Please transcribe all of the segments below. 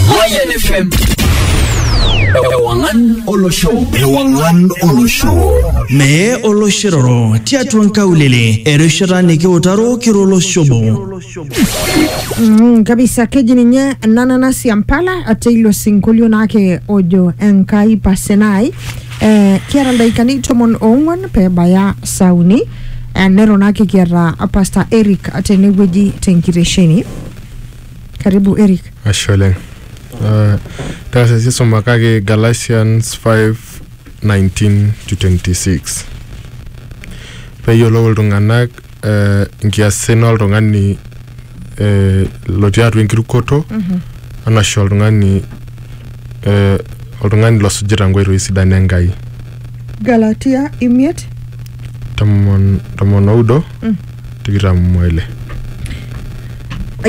Mayan FM. Ewangan Olosho. Ewangan Olosho. Mee oloshiroro tiatua nkaulele erishata nikiutaro kiro oloshobo. Mm, kabisa keji ninye nananasi ya mpala ate ilo sinkolio naake ojo enkai pasenai eh, kiata ildaikani tomon oong'uan pebaya saa uni eh, nero naake kiata pastor eric tenewueji tenkitesheni Karibu Eric. Ashe oleng. Uh, taasa sii sumakaki Galatians 5:19 to 26. Peyiolou iltung'anak uh, nkiasin oltung'ani uh, lotii atua enkirukoto mm -hmm. anashe oltung'ani uh, oltung'ani losujita nkoitoi sidan Enkai. Galatia imiet. Tomon, tomon oudo. Mm. tikitam oile.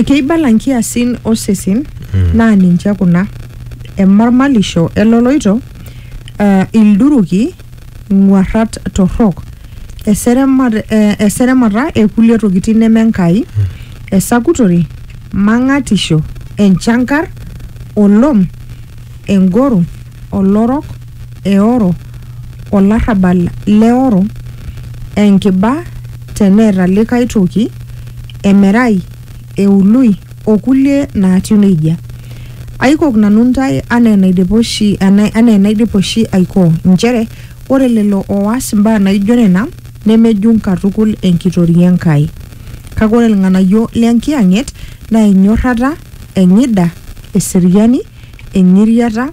Keibala nkiasin osesen naa ninche kuna emormalisho eloloito, eh, ilduruki, ng'uarrat torrok, eseremat, eh, eseremata ekulie tokitin neme Enkai, esakutore, mang'atisho, enchankar, olom, engoro, olorok, eoro, olarrabal leoro, enkiba teneeta likae toki, emerai, eului, o kulie naatiu neijia. Aikok nanu intae anaa enaidipa oshi, ana- anaa enaidipa oshi aikoo, inchere ore lelo ooas imbaa naijo nena nemejung katukul enkitoria e Nkai. Kake ore ilng'anayio le Nkiyang'et naa enyorrata, eng'ida, eseriani, eng'iriata,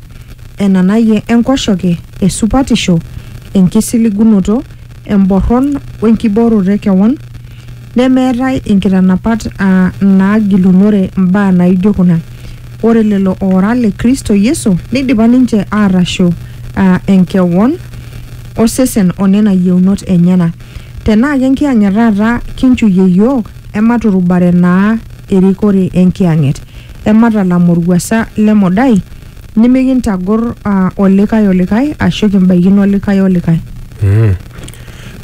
enanayie enkoshoke, esupatisho, enkisiligunoto, emborron o enkibooroto e kewon, nemeetae inkitanapat aa inaagilunore mbaa naaijo kuna. Ore lelo oora le Kristo Yesu neidipa ninche aatasho aa enkewon, osesen o nena yieunot enyena. Tenaa kenkiyang'et taata kinchuyie iyiook, ematurubare naa erikore enkiyang'et. ematalam olwuasa le modai, nimikintagor aa olikae olikae aashu kimbaikino olikae olikae.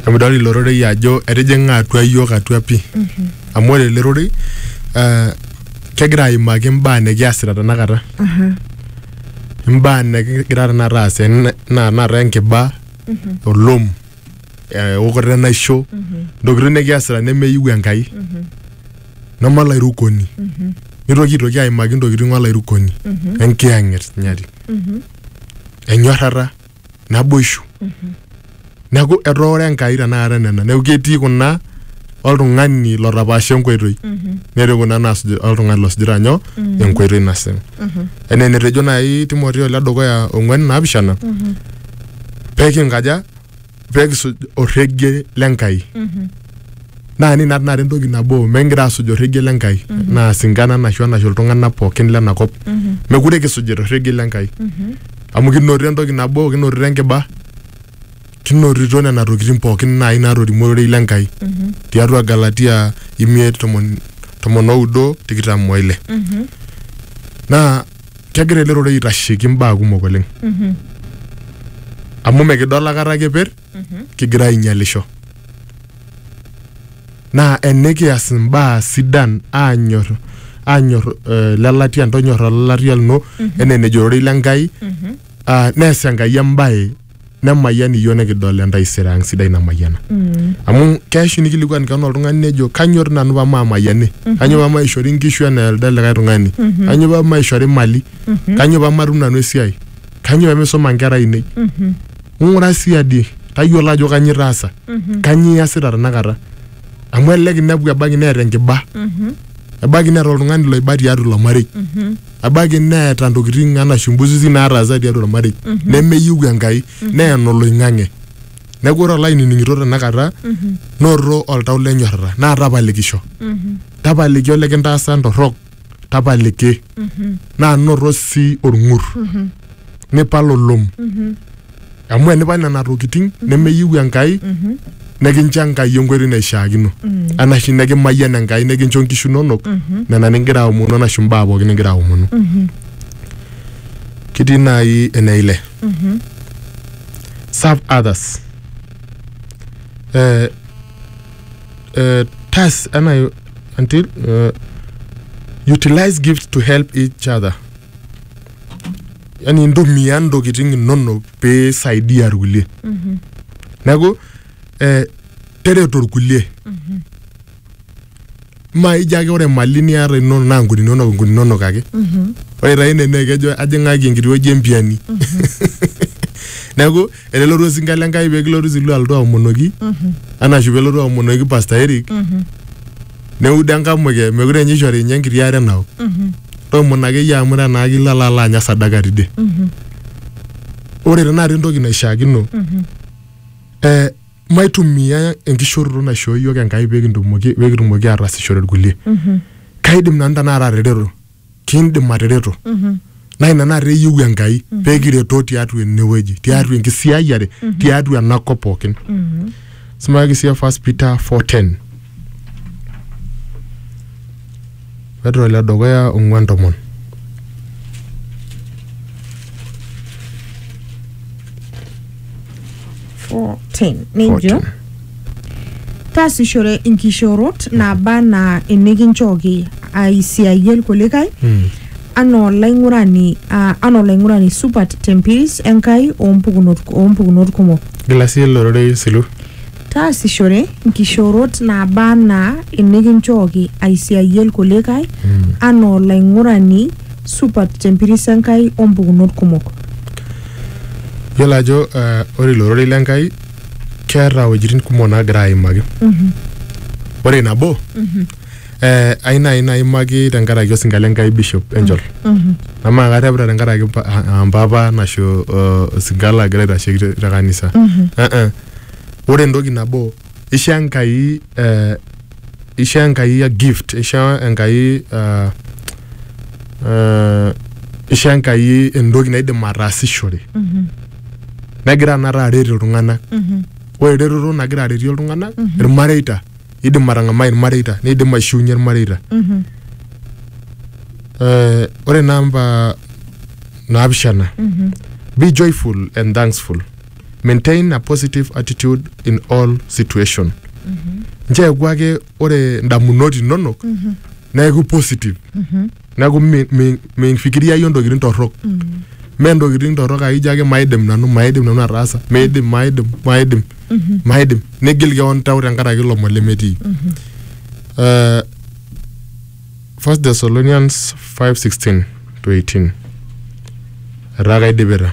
Emidol ilo rorei ajo etijing'a atua iyiook atua pi. Amu ore ele rorei eh, kegira aimaki imbaa nikiasita tenakata. Imbaa nikigira tenakata aas enaa tenakata enkiba, olom, eokoto enaisho, intokitin nikiasita nemeyieu Enkai. neme olairukoni nitoki aitoki aimaki ntokitin olairukoni enkiyang'et nyati enyorrata naboishu neeku etooro enkai tenakata nena neeku ketii kuna oltung'ani lotapaasha enkoitoi netii kuna naasuj oltung'ani losujita nyoo enkoitoi nasipa enaa enetejo naaji timoteo ledukuya ong'uan naapishana pekinkaja pee kisuj orregie le Nkai naa nina tenakata entoki nabo mekigira aasuj orregie le Nkai naa singana anashu anashu iltung'anak pookin lena kop mekure kisujita orregie le Nkai amu kinotito entoki nabo kinotito enkiba kinotito nena tokitin pookin naai naatorimuo ororei le Nkai tiatua Galatia imiet tomon tomon oudo tikitam oile naa kegira ele rorei aitasheki mbaa kumok oleng amu mikidol akata keper kigira ainyalisho naa enikias imbaa sidan aanyor aanyor eh, lelatia ntonyorra lelatia lino enaa enejo ororei le Nkai ah, nees Enkai embae nemayian iyiook nikidol entaisere ang sidai namayiana. amu keishu nikilikuan kewon oltung'ani nejo kanyoo doi nanu pamaamayiani kanyoo pamaishori nkishu enaa elde likae tung'ani kanyoo pamaishori mali kanyoo pamatum nanu esiai kanyoo pemisuma nkera ainei ng'ura siadi tayiolo ajo kanyoo itaasa kanyoo iyasita tenakata amu elelek inepu ebaiki neeta enkiba ebaiki neeta oltung'ani loiba tiatua ilo marei ebaiki neeta ntokitin anaa shumbuzizi naataasa tiatua ormarei nemeyieu enkai neya enoloing'ang'e neeku ore olainining'ito tenakata noto oltau lenyorrata naa tapalikisho tapaliki olikintaasa ntorrok tapaliki naa noto sii orng'ur nipal olom amu enipa nena tokitin mm-hmm. nemeyieu Enkai mm-hmm. nekincho Enkai enkoitoi naishiakino mm. anashe nekimayian Enkai nekincho nkishu inonok mm-hmm. nena nigira aomonu anashe mbaa pookin nigira aomonu ketii naaji ene ile serve others eh, eh, tas ena until eh, utilize gifts to help each other yani intumia ntokitin inonok pee isaidia irkulie mm-hmm. neeku eh, tereto irkulie mm-hmm. maija ake ore mali niata inonok naa nkuni inonok nkuni inonok ake mm-hmm. ore taa ine naa kejo ajing'aki enkiti wueji empiani neeku enelotu osinka le Nkai pee kilotu sii duo alotu aomonoki anashu pelotu aomonoki Pastor Eric neudo enkamuke mekure ninye ishori ninye enkiti are naok toomon akeyie amu tenaa kilo alo alo anya sadaka tidie ore tenakata entoki naishiakino eh, maitumia enkishoroto naishoo yiok Enkai pee kintumoki pee kitumoki aatasishore irkulie kaidim nanu tenakata atereto kindim atereto naa ina naata eyieu enkai pee kiretoo tiatua enewueji tiatua enkisiayiare tiatua ena kop pookin simaaki siye first peter 410 petro le dukuya ong'uan tomon 14 nejo taasishore inkishoorot naaba anaa inikinchooki aisiayie ilkulikae Mm. anaa olaing'urani ah, anaa olaing'urani supat tempiris enkai oompukunot oompukunot kumok Gilasi olororei silu. taasishore inkishoorot naaba anaa inikinchooki aisiayie ilkulikae anaa olaing'urani supat tempiris enkai oompukunot kumok Yiolo ajo eh, ore ilo rorei le Nkai keeta iwuejitin kumok naagira aimaki. Ore nabo eh, ai nai naimaki tenkaraki osinka le Nkai Bishop Angel. Amaa karrepita tenkaraki mpa- a- a- mpapa nasho eh, osinka lagira aitasheki te te kanisa. Eh, eh. Ore entoki nabo isho enkai eh, isho enkai a gift isho enkai ah, eh, isho enkai entoki naidim ataasishore negira anata aret iltung'anak ore eretoto nagira aretie iltung'anak irmareita idim atang'amai irmareita nidim aishiunye irmareita Eh, ore namba naapishana be joyful and thankful maintain a positive attitude in all situation ncheeku ake ore ndamunot inonok neeku positive neeku mi- mi- mifikiriayie ntokitin torrok mee ntokitin torrok ake ijo ake maidim nanu maidim nanu ataasa meidim maidim maidim maidim nigil keon tau tenkaraki ilomon lemetii Eh, First Thessalonians 5:16 to 18 etaa kaidipita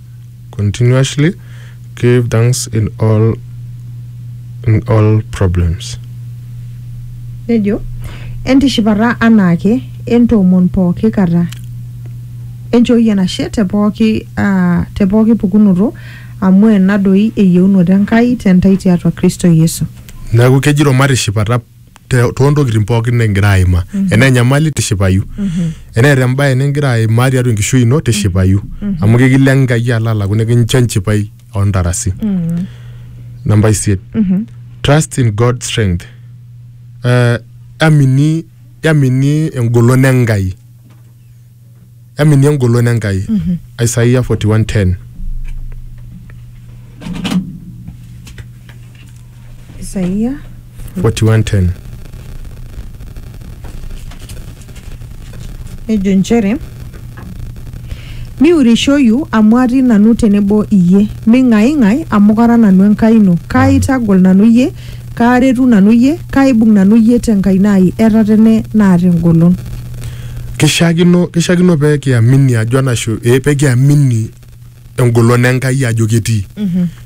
continuously give thanks in all in all problems nejo entishipata anaake entoomon pooki kata enchooki enashe te pooki ah, te pooki pukunoto amu ena doi eyieunoto enkai tentai tiatua kristo yesu neeku kejito matishipata te- toontokitin pookin nikigira aimaa enaa enyamali tishipayu eneeta embae nikigira aimaa tiatua enkishui ino tishipayu amu kekilo enkai alo alaku nikincho enchipai ontarasi namba isiet trust in god strength Eh, yamini yamini engolon enkai eminie engolon Enkai. Isaia 41:10. Isaia 41:10. nejo nchere miurishoyu amu atii nanu tenebo iyie ming'aing'ai amu kara nanu enkai ino kaaitagol nanu iyie kaaretu nanu iyie kaaibung nanu iyie tenkaina ai etatene naata engolon Kishiakino, kishiakino pee kiamini ajo enashu eh, pee kiamini engolon Enkai ajo ketii.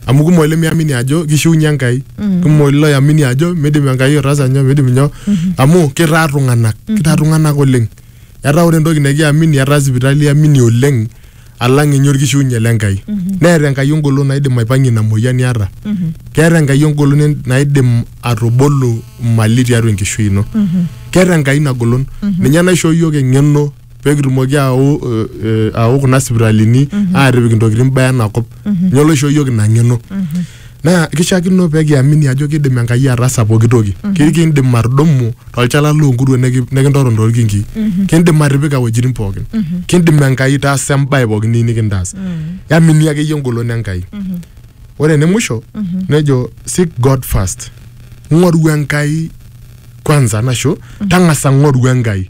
Amu kumok ilemiamini ajo kishiunye Enkai. Kumok iloyamini ajo midim Enkai ataasa nyoo, midim nyoo. Amu kitaa iltung'anak, kitaa iltung'anak oleng. Etaa ore entoki nikiamini etaa sipitali iamini oleng alang ninye orkishiunye le Nkai. Neeta Enkai engolon naidim aipang'ie ina moyian niata. Keeta Enkai engolon en- naidim atubulu mali tiatua enkishui ino. Keeta Enkai ina golon. Ninye naishoo iyiook eng'eno pee kitumoki aau eh, eh, aau kuna sipitalini aatipik intokitin baa ena kop. Ninye loishoo iyiook ina ng'eno. naa kishaakino pee kiamini ajo kidim Enkai ataasa pooki toki. Ki- Kiindim atudumu tolchala loonkuruon neki- nikintoton toolkinkii. Kiindim atipika iwuejitin pookin. Kiindim Enkai taasa embae pookin niyieu nikintaas. Yamini akeyie engolon Enkai. Ore ene musho nejo seek God first. Ng'oru Enkai kwanza nasho tang'asa ng'oru Enkai.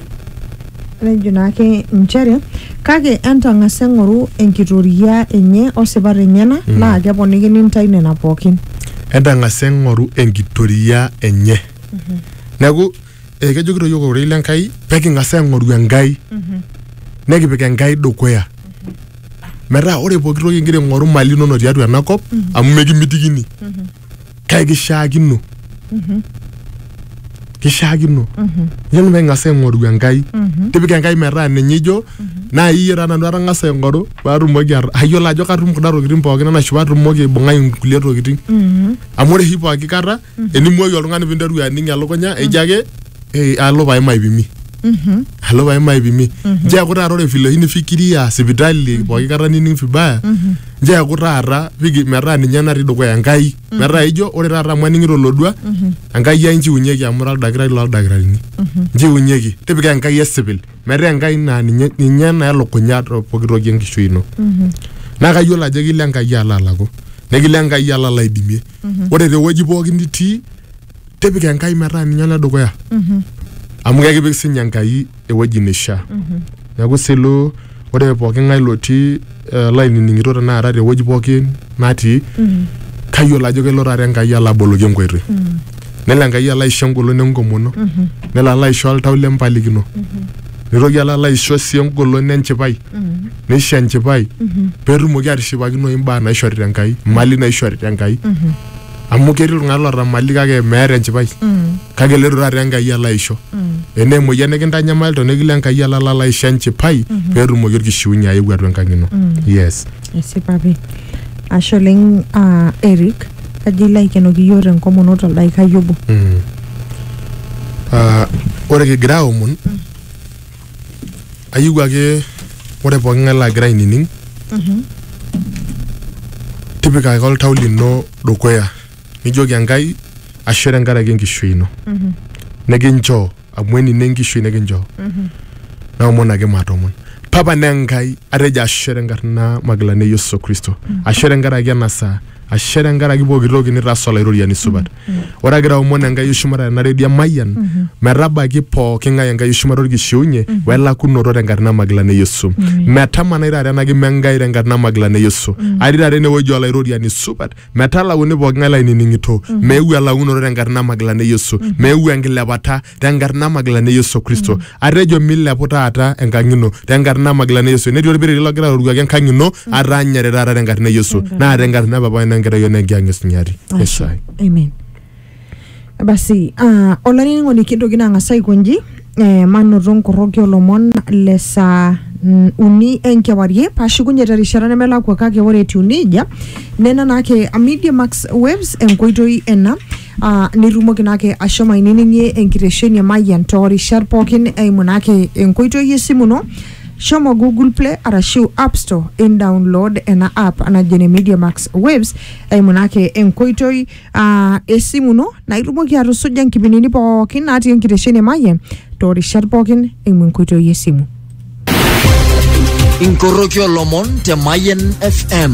nejo naake inchere kake entang'asa eng'oru enkitoria enye osipat enyena naa keponikini intae nena pookin entang'asa eng'oru enkitoria enye neeku eh, kejokito yiok ororei le Nkai peking'as aing'oru Enkai nekipik Enkai dukuya metaa ore pooki toki ingira aing'oru mali inono tiatua ena kop amu mekimitikini kake kishaakino kishaakino nyoo pee ing'as aing'oru Enkai tipika Enkai metaa ninye ijo naa iyie taa nanu atang'asa aing'oru paatumoki at- ayiolo ajo katum kuna tokitin pookin enaisho paatumoki aibung'ai inkulie tokitin amu ore oshi pooki kata enimuoyu oltung'ani pinteru aning elukunya eji ake "Eh, alo pae maipimi alo pae maipimi nchoo eeku taata ore vile oshi nifikiria sipitali pooki kata nining vibaya njeeku taata piki metaa ninye natii dukuya enkai metaa ijo ore taata amu aning'ito olodua enkai ai nchiunyeki amu ira oldakitari loldakitarini nchiunyeki tipika enkai esipil metaa enkai naa ninye ninye naa elukunya to poki toki enkishui ino naa kayiolo ajo ekilo enkai alo alaku nekilo enkai alo alaidimie ore tewueji pookin nitii tipika enkai metaa ninye ole dukuya amu kekipik sinye enkai ewueji neishaa neeku silo ore pooki ng'ae lotii eh, lainining'ito tenakata tewueji pookin natii kayiolo ajo kelo taata enkai alo aboloki enkoitoi nelo enkai alo aisho engolon enkomono nelo alo aisho oltau lempalikino nitoki alo alo aisho sii engolon enchipai neisho enchipai petumoki atishipakinoyu imbaa naishorita enkai imali naishorita enkai amu ketii iltung'anak loota mali kake meeta enchipai kake eloito taata enkai alo aisho enaa emoyian nikintanyamalita nikilo enkai alo alo aisho enchipai peetumoki orkishiunye ayeu atua enkang ino yes esipa pi ashe oleng ah, eric kaji ilo aikenoki iyioo tenkomono toldaikai obo Mm. Ah, ore kigira aomon ayieu ake ore pooki ng'ae lagira ainining tipika ake oltau lino dukuya nijoki enkai ashe tenkaraki enkishui ino nikinchoo amu enino enkishui nikinchoo naomon ake matomon papa naa enkai atejo ashe tenkarna magilani e yesu kristo ashe tenkaraki ena saa ashe tenkaraki pooki toki nitaasa olaitoriani supat ore agira aomon enkai oshumata tena redio emayian metabaiki pooki ng'ae enkai oshumata orkishiunye welakunoto tenkarna magilani e yesu metamanai taata ena kima enkai tenkarna magilani e yesu atii taata enewueji olaitoriani supat metalauni pooki ng'ae lainining'ito meeu elakunoto tenkarna magilani e yesu meeu enkilepata tenkarna magilani e yesu kristo atejo milepu taata enkang ino tenkarna magilani e yesu netii olpiriri logira aroruaki enkang ino ataanyare taata tenkarna e yesu Tenkarna. naa tenkarna e papai nenkerai onenkiang esinyati Ashe. esai Amen. Basi, ah, olainining'oni kintoki naa ang'as aikonji eh, manoto nkoroki olomon le saa mm, uni enkewarie paashukunye terishata nemelakua kake ore etiu nejia nena naake Media Max Waves enkoitoi ena Aa nitumoki naake ashomo ainining'ie enkitesheni e Mayian too rishat pookin eimu naake enkoitoi esimu ino. Shomo Google Play arashu App Store in download ena app naji ene Media Max Waves eimu naake enkoitoi aa esimu ino naa itumoki atusuja nkipindini pookin natii enkitesheni e Mayian too rishat pookin eimu enkoitoi esimu. Inkoroki olomon te Mayen FM.